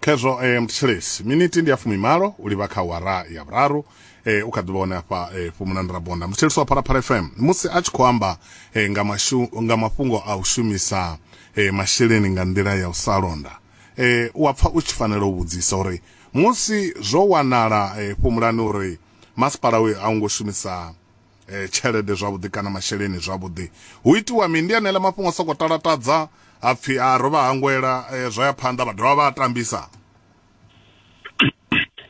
khezwo eh, mthetshelesi miniti ndi ya fumimalo u livha kha wara ya vhuraru eh, u kha ḓivha hone afha eh, fumulani rabonda mthetshelesi wa pharapara fm musi a tshi khou amba eh, nga, mashu, nga mafhungo a u shumisa eh, masheleni nga nḓila ya u sa londa eh, u a pfa u tshi fanela u vhudzisa uri musi zwo wanala eh, fumulani uri masipala uyo a u ngo shumisa eh, tshelede zwavhuḓi kana masheleni zwavhuḓi hu itiwa mini ndi aneela mafhungo a sokou talatadza a pfhi a ro vha hangwela eh, zwa ya phanḓa vha dovha vha a tambisa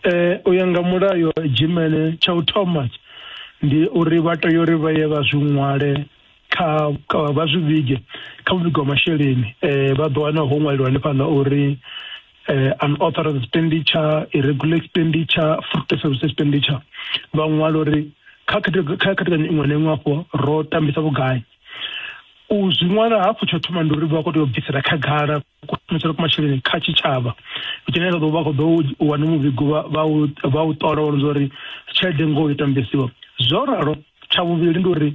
eh u ya nga mulayo dzhimele tsha u thoma ndi uri vha tea uri vha ye vha zwi ṅwale kha vha zwi vhige kha muvhigo wa masheleni um vha ḓo wana ho ṅwaliwa hanefhaḽa uri eh, unauthorized expenditure irregular expenditure fruit service expenditure vha ṅwala uri kha khethekanyo iṅwe na iṅwe afho ro tambisa vhugai u zwi ṅwala hafhu tsho thoma ndi uri vha khou tea u bvisela khagala kushumetselo kwa masheleni kha tshitshavha tshine vha ḓo vha khou ḓo wana muvhigo vha u ṱola wa uri tshelede ngoho yo tambisiwa zwo ralo tsha vhuvhili ndi uri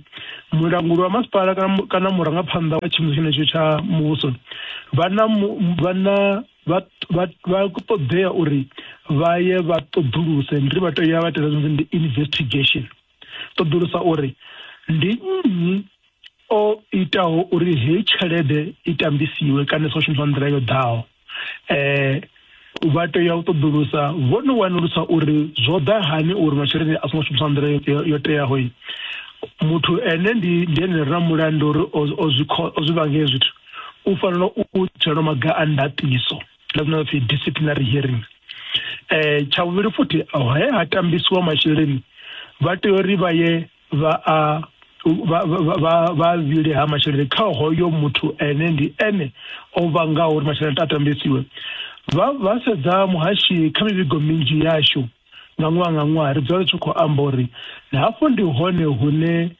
mulanguli wa masipala kana murangaphanḓa wa tshiimiswa tshenetsho tsha muvhuso vha na vha na vha ṱoḓea uri vha ye vha ṱoḓuluse ndi ri vha tea vha tenda zwino ndi investigation ṱoḓulusa uri ndi nnyi o itaho uri heyi tshelede i tambisiwe kana sa shumiswa nḓila yo ḓaho eh vha tea u ṱoḓulusa vho no wanulusa uri zwo ḓa hani uri masheleni a songo shumiswa nḓila yo teaho muthu ene ndi ndi ene ra mulandu uri o zwi o zwi vhange zwithu u fanela u dzhielwa maga a ndaṱiso na zwine pfi disciplinary hearing eh tsha vhuvhili futhi he ha tambisiwa masheleni vha tea uri vha ye vha a vha vha vha vhile ha masheleni kha hoyo muthu ene ndi ene o vhangaho uri masheleni a tambisiwe vha vha sedza muhashi kha mivhigo minzhi yashu nga ṅwaha nga ṅwaha ri dzula ri tshi khou amba uri hafho ndi hone hune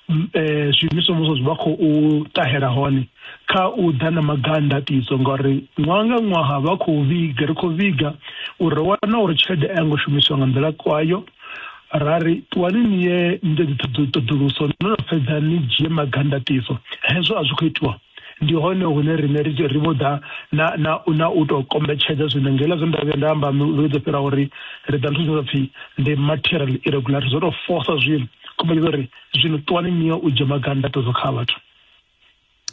um zwiimiswa muvhuso zwi vha khou ṱahela hone kha u ḓa na maganda tiso ngauri ṅwaha nga ṅwaha vha khou vhiga ri khou vhiga uri ro wana uri tshelede a yo ngo shumiswa nga nḓila kwayo ra ri ṱuwani ni ye ni ite dziṱhoḓuluso no no fhedza ni dzhie magandatiso hezwo a zwi khou itiwa ndi hone hune rine ri ri vho ḓa na na na u to kombetshedza zwine ngela zwe nda vhuya nda amba vhe dzo fhira uri ri ḓa nthusa pfhi ndi material irregularity zwo to fosa zwino kombetshedza uri zwino ṱuwani ni ye u dzhia magandatiso kha vhathu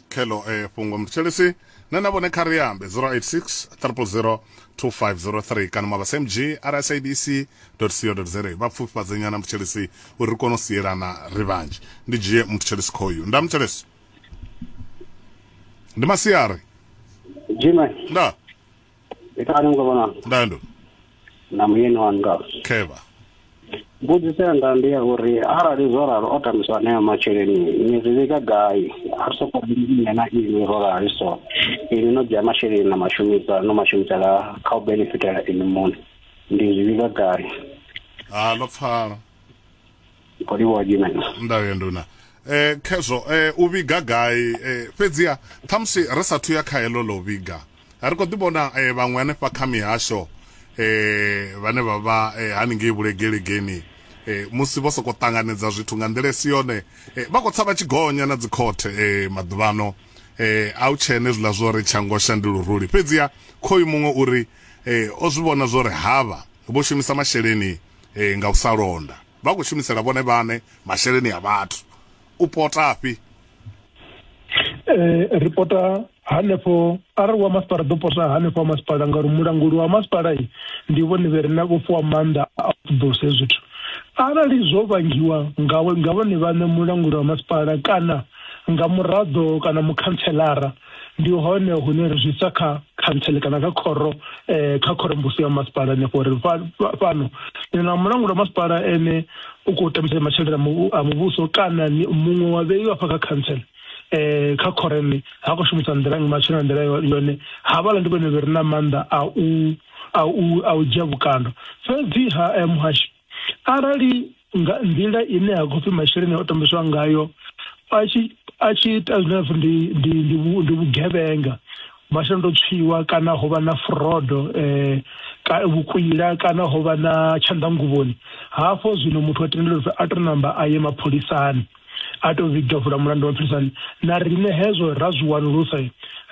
khelo eh, fhungo mthetshelesi na na vhone kha ri ambe 086 000 2503 kana mabasa mg rsabc co za vha pfufhifhadze nyana mthetshelesi uri ri kone u sielana ri vhanzhi ndi dzhie mthetshelesi khoyu nda mthetshelesi ndi masiari dzima nda Ndikani mukabona ndando na muyeni wanu ngalo kheva mbudziso yanga ndi ya uri arali zwo ralo o tambiswa anea masheleni ni zwi vhiga gai a ri soko nṋe na ini ro rali so ini no dzhia masheleni na mashumisa no mashumisela kha u benefitela ini muṋe ndi zwi vhiga gai ha ḽo pfala kho livhuwa dzimena ndavhe nduna eh khezwo eh u vhiga gai eh fhedziha ṱhamusi ri sathu ya kha heḽo ḽo vhiga ri khou ḓi vhona eh vhaṅwe hanefha kha mihasho eh vhane vha vha eh, haningei vhulegelegeni eh musi vho sokou ṱanganedza zwithu nga nḓila isi yone eh, vha khou tsa vha tshi gonya na dzikhothe eh maḓuvhano eh a u tshene zwiḽa zwo ri tshangosha ndi luruli fhedziha khoyu muṅwe uri eh o zwi vhona zwo ri havha vho shumisa masheleni Ee, nga u sa londa vha khou shumisela vhone vhaṋe masheleni a vhathu. U potafhi? Ee, ri pota hanefho arali wa masipala ḓo pota hanefho wa masipala ngauri mulanguli wa masipala ndi vhone vhe re na vho fhiwa maanḓa a u ṱoḓulusa hezwi zwithu arali zwo vhangiwa nga vhone vhaṋe mulanguli wa masipala kana nga muraḓo kana mukhantselara ndi hone hune ri zwi sa kha khantsele kana kha khoro eh, kha khorombusi ya masipala hanefho uri fhano ni na mulanguli wa masipala ene u khou tambisa masheleni a muvhuso kana muṅwe wa vheiwa afha kha khantsele eh kha khoreni ha khou shumisa nḓila ngi matshelo nḓila yone havhala ndi vhone vhe re na maanḓa a u a u a u dzhia vhukando fhedzi ha eh, muhashi arali nga nḓila ine ha khou pfi masheleni o tambiswa ngayo a tshi a tshi ita zwine ha pfi ndi ndi ndi vhu- ndi vhugevhenga masheleni to tswiwa kana ho vha na frodo eh ka vhukwila kana ho vha na tshanḓanguvhoni hafho zwino muthu a tendelwa uri a to namba a ye mapholisani a tou zwi davula mulandu wa philisani na riṋe hezwo ra zwi wanulusa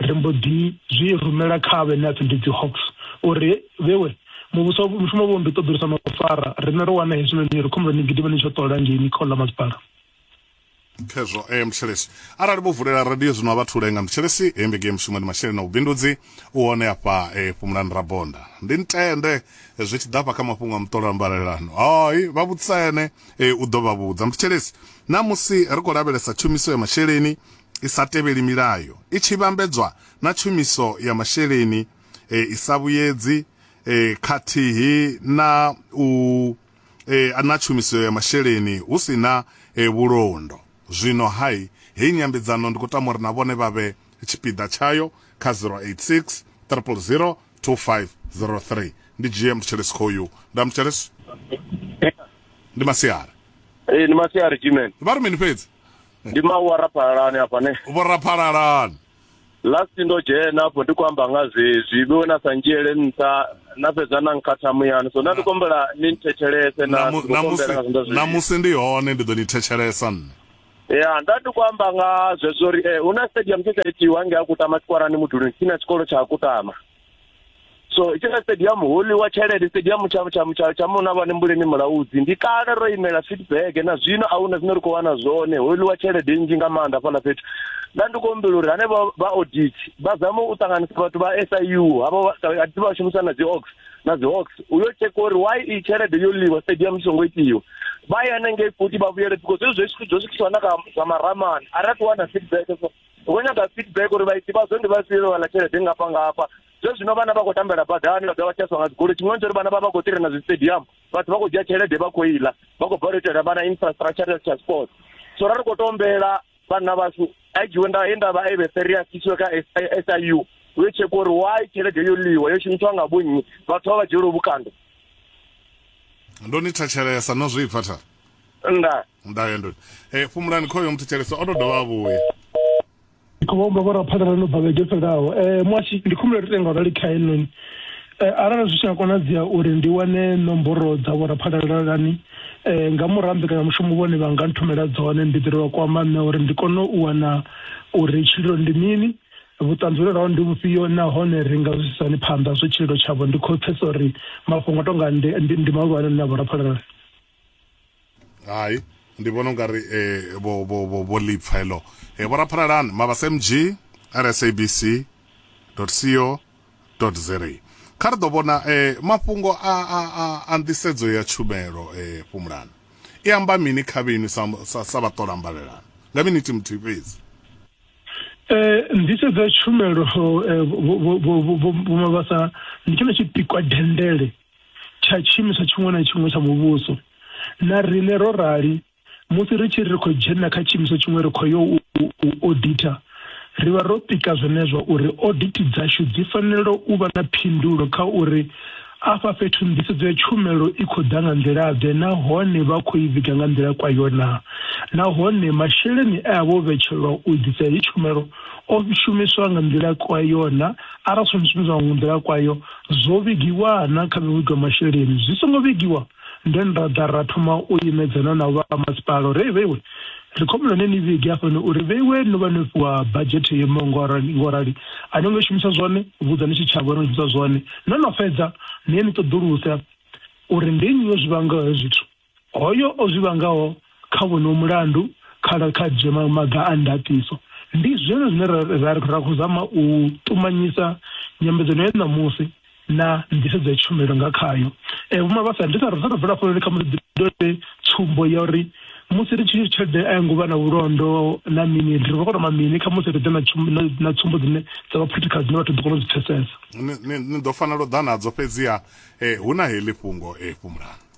ri mbo ḓi zwi rumela kha vhe ne a pfi ndi dzi hawks uri vhewe muvhuso mushumo vho ndi ṱoḓulusa mafara riṋe ro wana hezwinoni ri khombela ni gidima ni tsho ṱola ngei ni khola masipala khezwo e eh, mtshelesi arali vho vulela radio zwino a vha thule nga mtshelesi e eh, mbege mushumo ndi masheleni na vhubindudzi u hone afha e eh, fhumulani rabonda ndi ntende zwi tshi ḓafha kha mafhungo a muṱolo a mbalelano hai vha vhutsene e, u ḓo vha vhudza. Muthetshelesi, ṋamusi ri khou lavhelesa tshumiso ya masheleni i sa tevheli milayo, i tshi vhambedzwa na tshumiso ya masheleni e, i sa vhuyedzi e, khathihi na u e, na tshumiso ya masheleni hu si na e, vhulondo. Zwino hai heyi nyambedzano ndi khou tama uri na vhone vha vhe tshipiḓa tshayo kha 086 000 2503. Ndi dzhie muthetshelesi khoyu. Nda muthetshelesi. ndi masiari ee ndi masiari jimen vha ri mini fhedzi ndi mawu a raphalalani afha ne vho raphalalani last ndo dzhena afho ndi khou amba nga zwezwi vhe na sa ndzhiele nṱha na fhedza na nkhatha muyani so na ndi kombela ni nthetshelese na ndi khou kombela nga zwindo zwezwi namusi ndi hone ndi ḓo ni thetshelesa nne ya nda ndi khou amba nga zwezwo uri eh, hu na stadium tshe tsha itiwa nge a kutama tshikwarani muduluni tsini na tshikolo tsha kutama so tshila stadium holi wa tshelede stadium tsha tsha tsha tsha mona vhane mbuleni mulaudzi ndi kale ro imela feedback na zwino a huna zwine ri khou wana zwone holi wa tshelede nnzhi nga maanḓa fhaḽa fhethu nda ndi khou humbela uri hane vha audit vha zame u ṱanganisa vhathu vha SIU havha a ḓi vha shumisa na dzi ox na dzi ox u yo tsheka uri why i tshelede yo liwa stadium tshi songo itiwa vha ya nengei futhi vha vhuyele because zwi zwi zwi swikiswa na kha zwa maramani a ri a ṱuwa na feedback ri khou nyaga feedback uri vhaiti vhazwo ndi vhafhio vha wana tshelede ngafha ngafha zwe zwino vhana vha khou tambela badani vha dovha vha tshaswa nga dzigoloi tshiṅwe tsho ri vhana vha vha khou tirena zwistadium vhathu vha khou dzhia tshelede vha khou iḽa vha khou bva u itela vhana infrastructure ya transport so ra ri khou to ombela vhanna vhashu a dzhiwe nda he nda vha eve serious isiwe kha siu u yo tshekwa uri why tshelede yo ḽiwa yo shumiswa nga vhonnyi vhathu vha vha dzhielwe vhukando ndo ni thetshelesa no zwipfa thara nda nda ya ndoni eh fumulani khoyo muthu tshelesa o to dovha a vhuya khombo vhora phaḓalalo no bva vhege fhelaho um eh, mwashi ndi khumbulo ri tenga rali kha henoni um eh, arali zwi tshi nga konadzea uri ndi wane nomboro dza vhora phaḓalalani um eh, nga murahu mbekanyamushumo vhone vha nga nthumela dzone ndi ḓirelwa kwamba nṋe uri ndi kone u wana uri tshililo ndi mini vhuṱanzi vhune raho ndi vhufhio nahone ri nga zwi sisani phanḓa zwo tshililo tshavho ndi khou pfesa uri mafhungo a tonga ndi mahulwane na vhora phaḓalalani hayi ndi vhona ungari eh, vho vho vho vho lipfa helo eh, vho raphalalani mabasa mg rsabc co za kha ri ḓo vhona eh, mafhungo a, a, a, a nḓisedzo ya tshumelo eh, fhumulani i amba mini kha vhenu sa, sa, sa vhaṱola mbalelano nga minithi muthihi fhedzi Eh, nḓisedzo ya tshumelo eh, vho- vho- vho- vho- vho- vhomabasa ndi tshone tshipikwa dendele tsha tshiimiswa tshiṅwe na tshiṅwe tsha muvhuso. Na riṋe ro rali, musi ri tshi ri ri khou dzhena kha tshiimiswa tshiṅwe ri khou yo u oditha, ri vha ro pika zwenezwo uri odithi dzashu dzi fanela u vha na phindulo kha uri afha fhethu nḓisedzo ya tshumelo i khou ḓa nga nḓila-ḓe nahone vha khou i vhiga nga nḓila kwayo naa, nahone masheleni e a vha o vhetshelwa u ḓisa heyi tshumelo o shumiswa nga nḓila kwayo naa, arali a songo shumiswa nga nḓila kwayo, Zwo vhigiwa na kha mivhigo ya masheleni. Zwi songo vhigiwa, then ra ḓa ra thoma u imedzana na vha masipala uri, Hei vheiwe, ri khou humbela ni ni vhige hafhanoni uri vheiwe no vha no fhiwa badzhethe yo imaho ngo rali ngo rali, a no ngo i shumisa zwone, vhudzani tshitshavha uri no shumisa zwone. No no fhedza, ni ye ni ṱoḓuluse uri ndi nnyi o zwi vangaho hezwo zwithu. Hoyo o zwi vhangaho kha wonowo mulandu kha kha dzhie maga a ndaṱiso. Ndi zwone zwine ra ra ra khou zama u ṱumanyisa nyambedzano ya ṋamusi na nḓisedzo ya tshumelo nga khayo. Vho Mabasa, ndi sa ri sa tou bvela hafho ndi kha musi ḓi dovhe tsumbo ya uri musi ri tshi tshelede a yo ngo vha na vhulondo na mini ri vha khou tama mini kha musi ri ḓe na tsumbo na, na tsumbo dzine dza vha practical dzine vhathu ḓo kona u dzi pfesesa. Ni, ni, ni ḓo fanela u ḓa nadzo fhedziha eh, hu na heḽi fhungo eh, Fhumulani.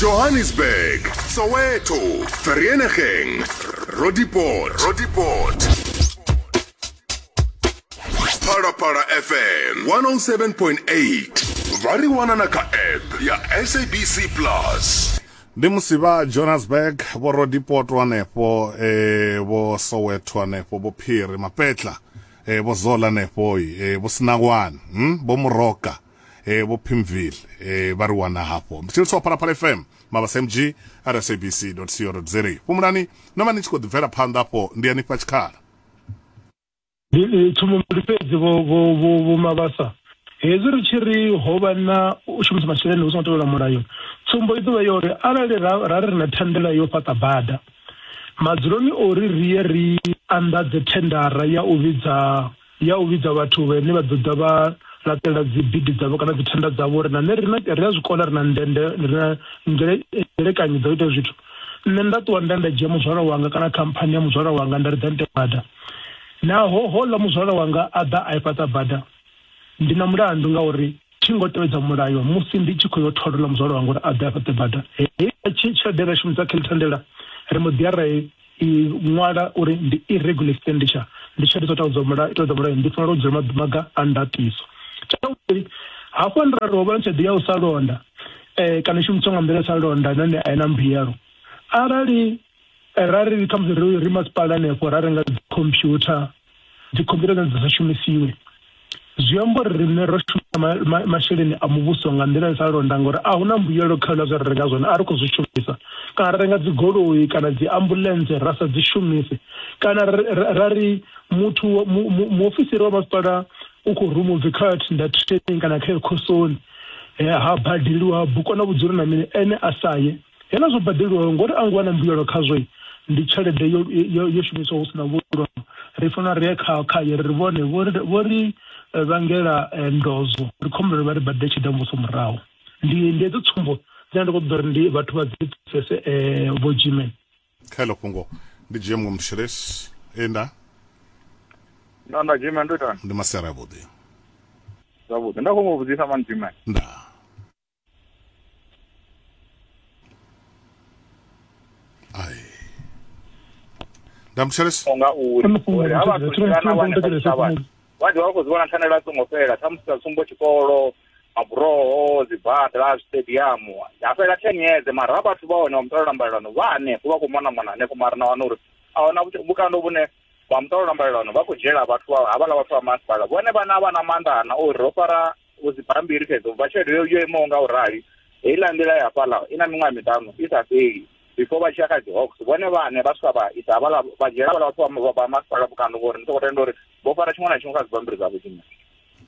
johannesburg soweto vereeniging roodepoort roodepoort phalaphala fm 107.8 vha ri wana na kha app ya sabc plus ndi musi vha johannesburg vho rodipoto hanefho eh, vho soweto hanefho vho phiri mapetla eh, vho zola hanefhoi eh, vho sinawani hm? vho muroka eh vho Pimville eh vha ri wana hafho mthilisi wa phalaphala fm mabasa mg rsabc co za fhumulani no vha ni tshi khou ḓibvela phanḓa hafho ndi anifha tshikhala tsumbo ndi fhedzi vho mabasa hezwi ri tshi ri ho vha na u shumisa masheleni hu songo tevhela mulayo tsumbo i ḓovha ya uri arali ra ri na thendela yo fhaṱa bada madzuloni ori ri ye ri anḓadze thendara ya u vhidza ya u vhidza vhathu vhane vha ḓo ḓa vha laṱela dzibidi dzavho kana dzithenda dzavho uri na nṋe ri a zwi kona ri na ndende ri na nzelekanyo dza u ita zwithu nṋe nda ṱuwa nda nda dzhia muzwala wanga kana khamphani ya muzwala wanga nda ri ḓa nte bada naho hola muzwala wanga a ḓa a i fhaṱa bada ndi na mulandu ngauri thi ngo tevhedza mulayo musi ndi tshi khou yo tholola muzwala wanga uri a ḓe a fhaṱe bada hei tshelede ra shumisa kha ḽithandela ri mbo ḓi ya ra i ṅwala uri ndi irregular expenditure ndi tshelede dzo tevhedza mulayo tevhedza mulayo ndi fanela u dzhia maga a ndatiso tsha vhuvhili hafho ndi ra ri ho vha na tshelede ya u sa londa um kana i shumiswa nga nḓila ya u sa londa nahone a i na mbuyelo arali Eh, ra ri khamusi ri ri masipala hanefho ra renga dzikhompyutha dzikhompyutha dzine dza sa shumisiwe zwi amba uri riṋe ro shumisa ma- ma- masheleni a muvhuso nga nḓila i sa londa ngori a hu na mbuyelo kha hula zwe ra renga zwone a ri khou zwi shumisa kana ra renga dzigoloi kana dzi ambulense ra sa dzi shumise kana ra- ra- ra ri muthu wa- mu- mu- muofisiri wa masipala u khou ruma ubvi kha thinda training kana kha ekhosoni Eh, ha badeliwa ha bukwa na vhudzulo na mini ene a sa ye Hela zwo badeliwaho ngori a ngo wana mbuyelo khazwo ndi tshelede yo, yo, yo shumiswa hu si na vhulondo ri fanela ri ye kha khaye ri vhone vho ri eh, vhangela eh, ndozo ri khombela vha ri badele tshelede ya muvhuso murahu ndi ndi edzo tsumbo dzine ndi khou ṱoḓa uri ndi vhathu vha dzi pfesese eh, vho jimen kha elo fhungo ndi dzhie muṅwe mushelesi e nda nda nda jimen ndo itani ndi masera avhuḓi zwavhuḓi nda khou mu vhudzisa mani jimen nda Ai. ndamutshelesa so nga uri uri ha vhathu tshilana vhane vha tshitshavha vha ḓivha vha khou zwi vhona thandela a songo fhela khamusi sa tsumbo tshikolo maburoho dzibada stadium ya fhela ten years mara ha vhathu vha hone vha muṱolela mbalelano vha hanefho vha khou mona mona hanefho mara na wana uri a hona vhukando vhune vha muṱolela mbalelano vha khou dzhiela vhathu havhaḽa vhathu vha masipala vhone vhana vha na maanḓa ana uri ro fara u dzi bambiri fhedzi ubva tshelede yo yo imaho nga u rali heiḽa nḓila ya fhaḽa i na miṅwaha miṱanu i sa fheli before vha tshi ya kha dzi hawks vhone vhane vha swika vha isa havhala vha dzhiela havhala vhathu vha masipala vhukando ngori ndi soko tenda uri vho fara tshiṅwe na tshiṅwe kha dzibambiri dza vhudzima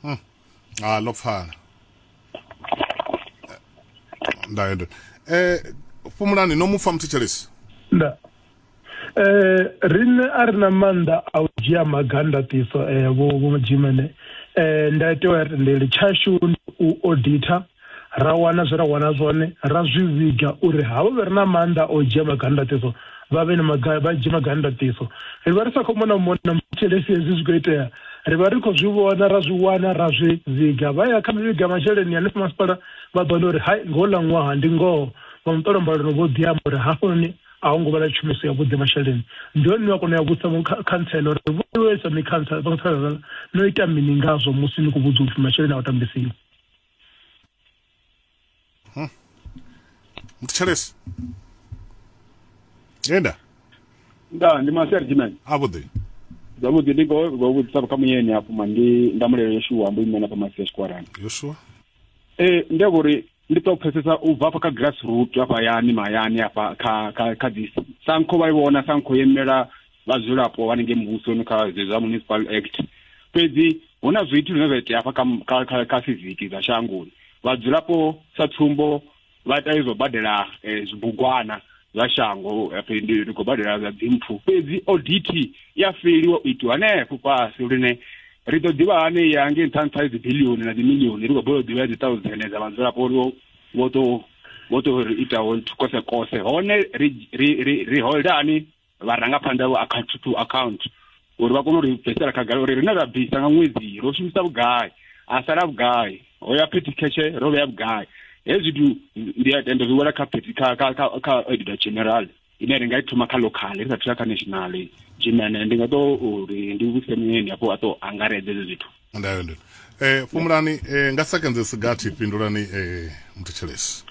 hmm. a ah, ḽo pfala eh, ndayo ndo eh fumulani no mupfa muthetshelesi nda eh riṋe a ri na maanḓa a u dzhia maga ndaṱiso eh vho vho dzimene eh ndaitewa ya tendeli tshashu ndi u auditor ra wana zwe ra wana zwone ra zwi vhiga uri havho vhe re na maanḓa o dzhia maga ndaṱiso vha vhe na maga vha dzhie maga ndaṱiso ri vha ri sa khou mona mona muthelesi hezwi zwi khou itea ri vha ri khou zwi vhona ra zwi wana ra zwi vhiga vha ya kha mivhiga masheleni hanefho masipala vha ḓo wana uri hai ngoho ḽa ṅwaha ndi ngoho vha muṱolo mbalelo vho ḓi amba uri hafhanoni a ho ngo vha na tshumiso ya vhuḓi masheleni ndi hone ni a kona ya vhusa khantsela uri vhuisa mi khantsela khantsela no ita mini ngazwo musi ni khou vhudzwa upfhi masheleni a u tambisiwa hmm. mthetshelesi enda nda ndi maseri jimene a vhuḓi zwavhuḓi ndi khou vhudzisa kha muyeni hafhu ma ndi ndamulelo yoshuwa mbo imena kha masi ya tshikwarani yoshuwa ee ndi a vhori ndi to pfesesa u bva afha kha grassroot afha hayani mahayani afha kha kha kha dzi sankho vha i vhona sankho yo imela vhadzulapo vha ninge muvhusoni kha zwa municipal act fhedzi hu na zwithu zwine zwa itea afha kha kha kha fiziki dza shangoni vhadzulapo sa tsumbo vha ita izwo badela eh, zwibugwana zwa shango phi ndi ri khou badela zwa dzimpfu fhedzi audit ya feliwa u itiwa hanefho fhasi lune ri ḓo ḓivha hane ya nge nṱha nṱha dzi bilioni na dzi milioni ri khou bola u ḓivha dzi thousand dza vhadzulapo uri vho to vho to ri itaho kose kose hone ri ri ri ri holdani vharangaphanḓa vho account to account uri vha kone u ri bvisela khagala uri rine ra bvisa nga ṅwedzi ro shumisa vhugai a sala vhugai ho ya petty cash ro vhea vhugai hezwi zwithu ndi a tenda zwi wela kha petty kha kha kha kha auditor general ine ri nga i thoma kha local ri sa thuya kha national jimene ndi nga to uri ndi vhuse muyeni hafho a to angaredza hezwi zwithu ndayo ndini eh fumulani eh nga seconds sigathi pindulani eh mthetshelesi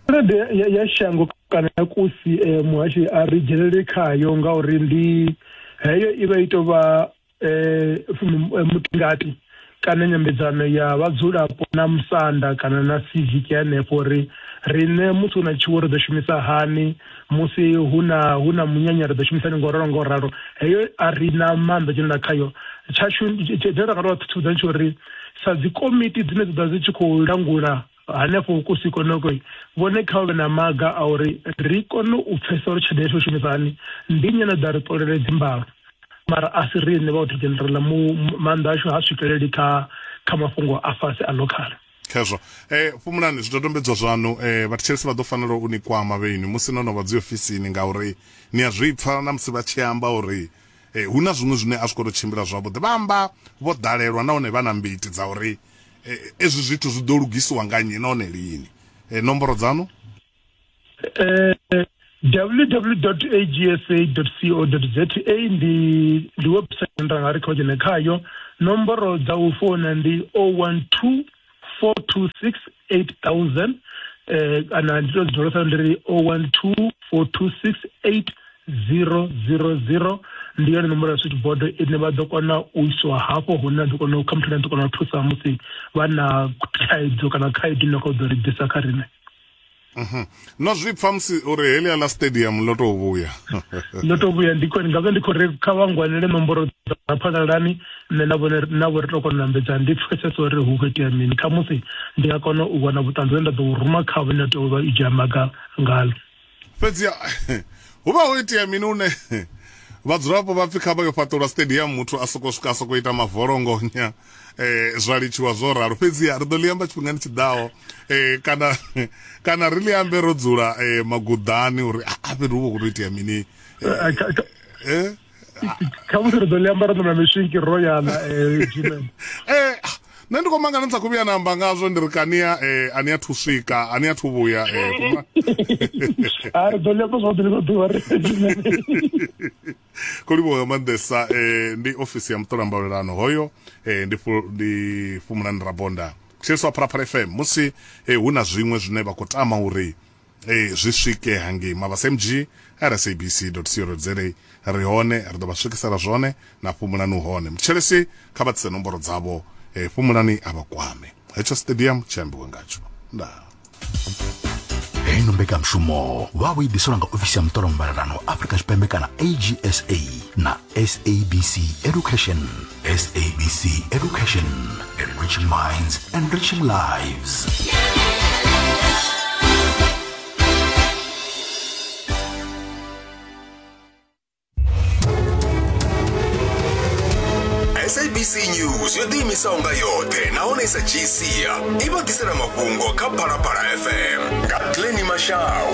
tshelede ya, ya shango kana ya kusi eh, muhashi a ri dzhenelele khayo ngauri ndi heyo i vha i tou vha eh, fum- eh, mutingati kana nyambedzano ya vhadzulapo na musanda kana na civic ya henefho uri riṋe musi hu na tshiwo ri ḓo shumisa hani musi hu na hu na munyanya ri ḓo shumisani ngo ralo ngo ralo heyo a ri na maanḓa dzhenela khayo tshashu dzine ra nga tou thuthuza ndi tsho uri sa dzi komiti dzine dzi ḓa dzi tshi khou langula hanefho kusi konoko vhone kha vhe na maga a uri ri kone u pfhesesa uri tshelede yashu shumisa hani ndi nnyi no ḓa ri ṱolele dzimbalo mara a si riṋe vha u generala mu maanḓa ashu ha swikeleli kha kha mafhungo a fhasi a local Khezwo, e, fhumulani zwidodombedzwa zwaṋu. E, vhathetshelesi vha ḓo fanela u ni kwama vheinwi musi no no vha dziofisini, ngauri ni a zwi pfa na musi vha tshi amba uri e, hu na zwiṅwe zwine a zwi khou tou tshimbila zwavhuḓi. Vha amba vho ḓalelwa nahone vha na mbiti dza uri e, ezwi zwithu zwi ḓo lugisiwa nga nnyi nahone lini. E, nomboro dzaṋu? eh, www.agsa.co.za ndi ndi website nda nga ri kha dzhene khayo nomboro dza u founa ndi 012 426 8000 eh kana ndi to dzi dolosa ndi ri 012 426 8000 ndi yone nomboro ya switchboard ine vha ḓo kona u iswa hafho hune a ḓo kona u kha muthu ane a ḓo kona u thusa musi vha na thaidzo kana khaedu ine kha u ḓo ri ḓisa kha riṋe Mhm. no zwi pfa musi uri helia la stadium ḽo tou vhuya ḽo tou vhuya ndi khori ngazwo ndi khou ri kha vha ngwanele nomboro dza phalalani nṋe na vhone na vho ri tou kona u ambedza ndi pfesesa uri hu khou itea mini kha musi ndi nga kona u wana vhuṱanzi vhune nda ḓo u ruma khavho ine tea u vha i dzhia maga ngalo fhedzi hu vha ho itea mini une vhadzulapo vha pfi kha vha yo fhaṱulwa stadium muthu a soko swika a soko ita mavolongonya eh zwa litshiwa zwo ralo fhedzi ri ḓo ḽi amba tshifhingani tshi ḓaho eh kana kana ri ḽi ambe ro dzula eh maguḓani uri a ah, fhethu hu vha khou itea mini eh, eh? kha musi ri ḓo ḽi amba ro ṋamela miswinki ro yana eh, eh ah, nṋe ndi khou mangana sa kuvhuya namba ngazwo ndi ri kania eh ani athu swika ani athu vhuya eh kuma a ri ḓo ḽi amba zwa ḓo ḽi ḓo ḓuvha ri kho livhuwa nga maanḓesa eh, ndi ofisi ya muṱola mbalelano hoyo eh, ndi, fu, ndi fumulani rabonda kusheliswa pharaphala fm musi eh, hu na zwiṅwe zwine vha khou tama uri eh, zwi swike hangei mavhasa mg rsabc co za ri hone ri ḓo vha swikisela zwone na fumulani hone mutshelesi kha vha tsise nomboro dzavho eh, fumulani a vha kwame hetsho stadium tshi ambiwe ngatsho ndaa hei no mbekanyamushumo vha vho i ḓiselwa nga ofisi ya muṱolo muvhalelano afrika tshipembe kana agsa na sabc education sabc education enriching minds enriching lives sabc news yo ḓiimisaho nga yoṱhe nahone sa gcia i vha ḓisela mafhungo kha phalaphala fm nga glenny mashau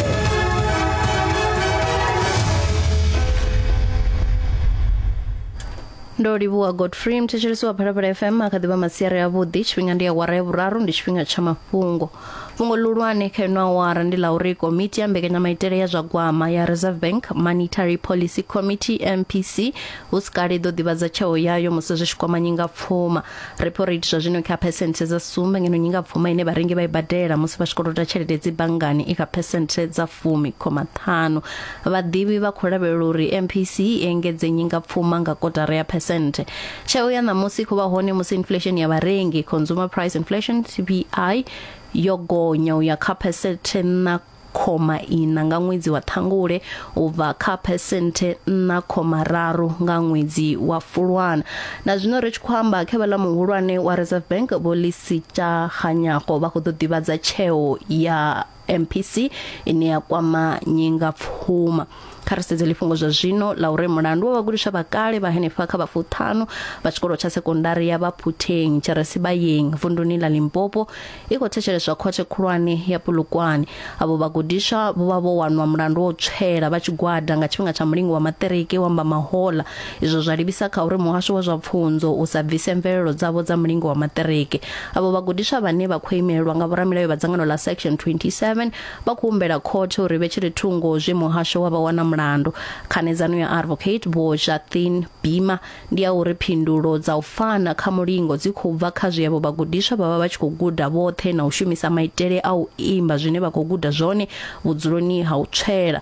ndo livhuwa godfrey mthetshelesi wa phalaphala fm a kha ḓivha masiari avhuḓi tshifhinga ndi awara ya vhuraru ndi tshifhinga tsha mafhungo fhungo ḽihulwane kha ino awara ndi ḽa uri komiti ya mbekanyamaitele ya zwa gwama ya reserve bank monetary policy committee mpc hu si kale i ḓo ḓivhadza tsheo yayo musi zwi tshi kwama nyingapfuma repo rate zwa zwino kha phesenthe dza sumbe ngeno nyingapfuma ine vharengi vha i badela musi vha tshi kolota tshelede dzi banngani i kha phesenthe dza fumi khoma ṱhanu vhaḓivhi vha khou lavhelela uri mpc i engedze nyingapfuma nga kotara ya phesenthe Tsheo ya ṋamusi khou vha hone musi inflesheni ya vharengi, Consumer Price Inflation, CPI, yo gonya u ya kha phesenthe nṋa khoma ina nga ṅwedzi wa Ṱhangule u bva kha phesenthe nṋa khoma raru nga ṅwedzi wa Fulwana. Na zwino ri tshi khou amba, khevheḽa muhulwane wa Reserve Bank Vho Lisitsha Kganyago vha khou ḓo ḓivhadza tsheo ya mpc ine ya kwama nyingapfuma kha ri sedze lifhungo zwa zwino la uri mulandu wa vhagudiswa vha kale vha henefha kha vhafuṱhanu vha tshikolo tsha sekondari ya vhaphuthenyi tshiresibayeng vunduni ḽa limpopo i khou thetsheleswa khothe khulwane ya pulukwane avho vhagudiswa vho vha vho wanwa mulandu wa u tswela vha tshigwada nga tshifhinga tsha mulingo wa maṱiriki wa mbamahola izwo zwa livhisa kha uri muhasho wa zwa pfunzo u sa bvise mvelelo dzavho dza mulingo wa maṱiriki Avho vhagudiswa vhane vha khou imelelwa nga vhoramilayo vha dzangano ḽa Section 27 vha khou humbela khothe uri vhe tshiri thungo zwe muhasho wa vha wana mulandu. Khanedzano ya Advocate Vho Jathin Bima ndi ya uri phindulo dza u fana kha mulingo dzi khou bva kha zwe avho vhagudiswa vha vha vha tshi khou guda vhoṱhe na u shumisa maitele a u imba zwine vha khou guda zwone vhudzuloni ha u tswela.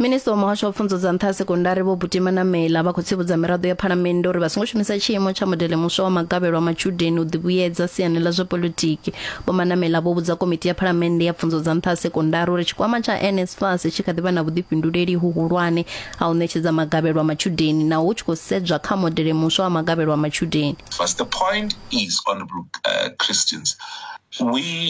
Minisiṱa wa Muhasho wa Pfunzo dza Nṱha ha Sekondari Vho Butima Namela vha khou tsivhudza miraḓo ya Phalamennde uri vha songo shumisa tshiimo tsha modele muswa wa magavhelo a matshudeni u ḓivhuyedza siani ḽa zwa politiki. Vho Manamela vho vhudza Komiti ya Phalamennde ya Pfunzo dza Nṱha ha Sekondari uri tshikwama tsha NSFAS tshi kha ḓi vha na vhuḓifhinduleli huhulwane ha u ṋetshedza magavhelo a matshudeni naho hu tshi khou sedzwa kha modele muswa wa magavhelo a matshudeni. But the point is, Honourable uh, Christians, we